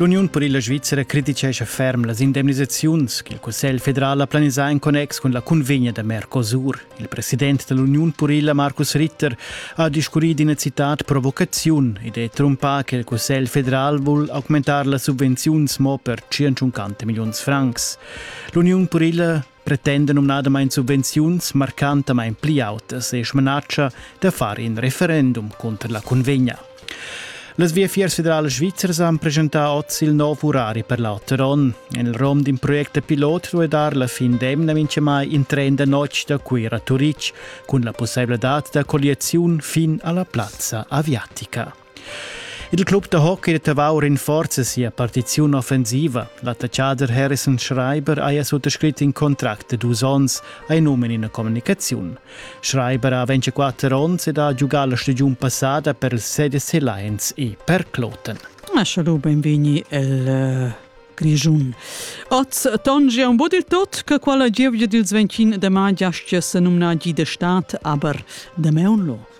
L'Uniun per la Svizzera criticescha ferm las indemnisaziuns che il Cussegl federal ha planisà en connex cun la cunvegna da Mercosur. Il president dell'Uniun purila Markus Ritter ha discurrì d'ina citat provocaziun ed è trumpà che il Cussegl federal vul augmentar las subvenziuns mo per 150 milliuns francs. L'Uniun purila pretenda numnadamain subvenziuns marcantamain pli autas e smanatscha da far in referendum cunter la cunvegna. Las viafiers federales svizzers han presentà oz il nov urari per l'auter onn. En il rom d'un project pilot duai dar la fin d'emna mintgamai in tren da notg da Cuira a Turitg cun la pussailadad da colliaziun fin alla plazza aviatica. Il club da hockey da Tavau rinforza sia partiziun offensiva. L'attaccader Harrison Schreiber haja suttascrit in contract da dus onns ai num in ina communicaziun. Schreiber ha 24 onns ed ha giugà la stagiun passada per il CDC Lions e per Kloten. Maschalo benvegni el uh, Grischun. Oz tongia un bod il tot che quella gievgia dils 25 de mai giastia se numna gi de stat, aber de meun lo.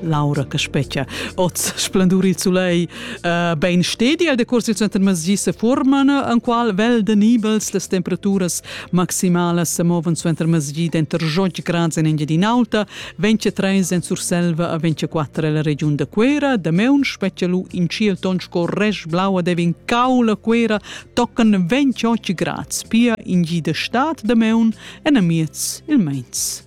Laura Caspecchia. Oz splendur il sulei uh, ben stedi al decurs il center Masgi se forman en qual vel de nibels las temperaturas maximalas se moven suenter Masgi denter Jog grads en Engiadin'Alta, 23 en Surselva a 24 la regiun de Quera, de meun speccialu in ciel ton sco resch blaua devin caula Quera tocan 28 grads, pia in gi de stat de meun en amiez il meins.